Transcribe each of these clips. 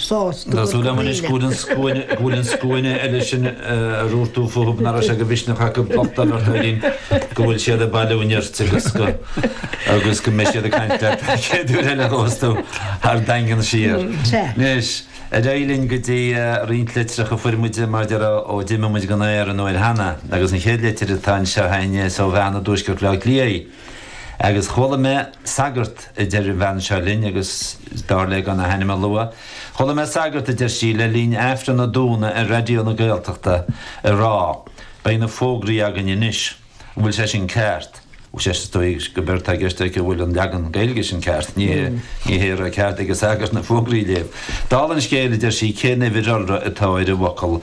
Tá súil agam anois go bhfuil an scuaine, go bhfuil an scuaine eile sin a raibh tú fúthu nach raibh sé de mhisneach acu do theacht ar ais orainn go bhfuil siad ag bailiú nirt agus go, agus go mbeidh siad ag caint leat an chéad uair eile a bheas tú ar an Daingean siar. Sea. Anois, ar aghaidh linn go dtí roinnt litreacha a fuair muid, mar a déarfá ó d'imigh muid den aer an uair cheana, agus an chéad litir atá anseo a'inn is ó bhean i dtuaisceart Bhleá Cliath í. Agus chuala mé sagart, a deir an bhean seo linn, agus d'iarr léi gan a hainm a lua, chuala mé sagart, a deir sí, le linn Aifreann an Domhnaigh ar Raidió na Gaeltachta ag rá, Beidh na fógraí againn anois. An bhfuil sé sin ceart? Is dóigh gob éard atá i gceist aici an bhfuil an leagan Gaeilge sin ceart. Ní hé a raibh cead ag an sagart na fógraí a léamh. Dála an scéil, a deir sí, cén uimhir iolra atá ar an bhfocal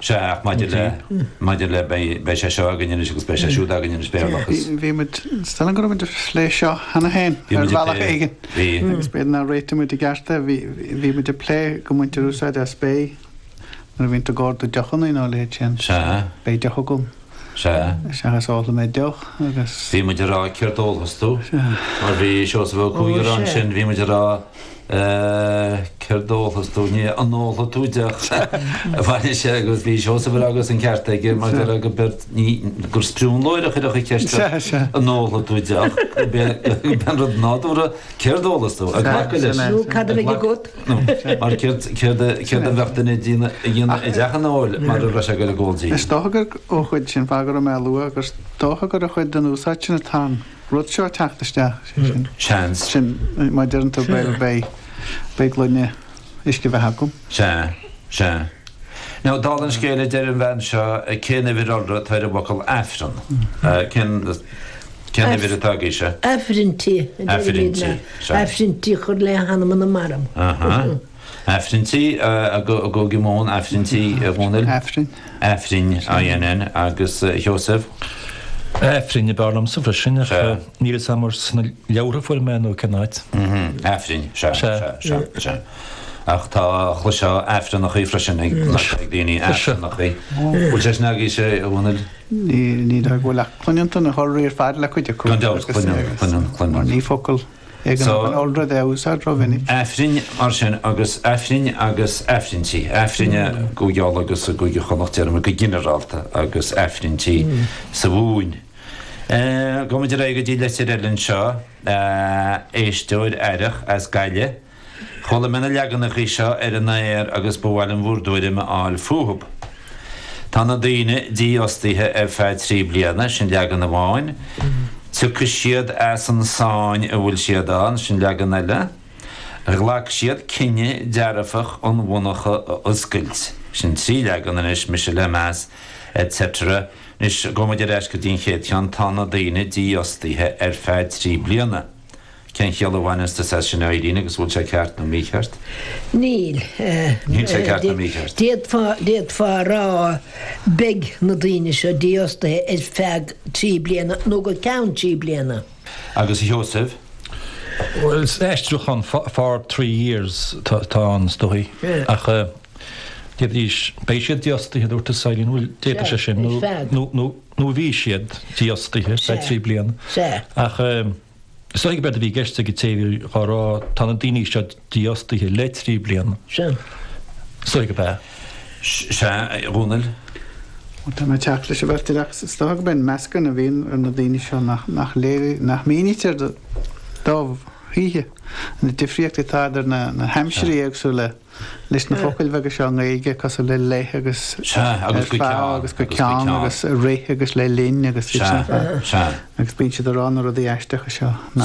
Sea, ach maidir le, maidir le, beidh sé seo againn anois agus beidh sé siúd againn anois, Béarlachas. Bhí, bhí muid, is dóigh liom go raibh muid ag plé seo cheana féin ar bhealach éigin. Bhí. Agus b'fhéidir nár réitigh muid i gceart é, bhí, bhí muid ag plé go mbaintear úsáid as beidh nuair a bhíonn tú ag cur do deochannaí nó a leithéid sin. Sea. Beidh deoch agam. Sea. Seachas ólfaidh mé deoch agus. Bhí muid ag rá céard ólfas tú? Mar bhí Seosamh Ó Cuaig ansin, bhí muid ag rá, céard ólfas tú, ní an ólfaidh tú deoch? Anois agus bhí Seosamh ag rá agus an ceart aige mar gur ag obair, gur sprionlóir a chuirfeadh an cheist seo, an ólfaidh tú deoch? Gurb é an rud nádúrtha, céard ólfas tú? Ag glacadh leis. Nó cad a bheidh agat? Mar céard a bheadh duine ag déanamh i dteach an óil mara raibh sé ag dul ag ól dí? Is dócha gurb é cuid sin fáth go raibh mé á lua gur dócha gur cuid den úsáid sin atá an rud seo ag teacht isteach, sé sin. Seans. Sin, má deireann tú bhuel beidh, beidh gloine uisce beatha agam. Sea, sea. Now, dála an scéil a deir an bhean seo cén uimhir iolra atá ar an bhfocal Aifreann? Cén. Cén cineál atá agaibhse? Aifrinntí, a deirimidne, aifrinntí a chur le hanam na marbh. Ahaa. Aifrinntí i gCúige Mumhan, aifrinntí, a Dhónaill. Aifrinn. Aifrinn, INN, agus a Sheosaimh? Aifrinn ab fhearr liomsa freisin ach níl fhios agam ar sna leabhartha a fuair mé é nó cén áit. Aifrinn, sea, sea, sea, sea. Ach tá, chloisfeá aifreannachaí freisin ag daoine, aifreannachaí. Bhfuil sé sin agaibhse, a Dhónaill? Ní dóigh go bhfuil ach cluineann tú na hiolraí ar fad le cuid acu. Gan dabht, cluineann, cluineann, cluineann. Mar ní focal é go mbíonn an iolra de á úsáid rómhinic. Aifrinn, mar sin, agus aifrinn agus aifrinntí. Aifrinn i gCúige Uladh agus i gCúige Chonnacht, déarfaimid, go ginearálta, agus aifrinntí sa Mhumhain. Gabhaimid ar aghaidh go dtí litir eile anseo, éisteoir aireach as Gaillimh. Chuala mé na leaganacha seo ar an aer agus ba mhaith liom bhur dtuairim a fháil fúthub. Tá na daoine dífhostaithe ar feadh trí bliana, sin leagan amháin. Tiocfaidh siad as an sáinn a bhfuil siad ann, sin leagan eile. Ghlac siad cinneadh dearfach an mhonarcha a oscailt, sin trí leagan. Anois, mise le meas, et cetera. Anois, gabhfaimid ar ais go dtí an chéad cheann, tá na daoine dífhostaithe ar feadh trí bliana. Cén chiall a bhaineas tusa as sin, a Aingeal, agus an bhfuil sé ceart nó mícheart? Níl. Níl sé ceart nó mícheart. D'fhéadfá, d'fhéadfá a rá beidh na daoine seo dífhostaithe ar feadh trí bliana nó go ceann trí bliana. Agus a Sheosaimh? Bhuel, san aistriúchán fo, for three years atá, atá ann is dóigh. Ach d'fhéadfaidís, beidh siad dífhostaithe a dúirt tú, a Aingeal, an bhfuil, d'fhéadfadh sé sin nó, nó, nó, nó bhí siad dífhostaithe ar feadh trí bliana, ach is dóichí gurb é a bhí i gceist ag an té a bhí á rá, tá na daoine seo dífhostaithe le trí bliana. Is dóichí gurb ea. Sea, a Dhónaill? Tá mé ag teacht leis an bheirt ar, agus is dócha gurb é an meascán a bhíonn ar na daoine seo nach léirítear, nach mínítear dóibh choíche, an difríocht atá idir na haimsirí éagsúla. leis na focail bheaga seo i nGaeilge, cosúil le 'le' agus 'ar feadh' agus 'go ceann' agus 'i rith' agus 'le linn' agus iad sin ar fad. Agus bíonn siad ag rá na rudaí aisteacha seo nach.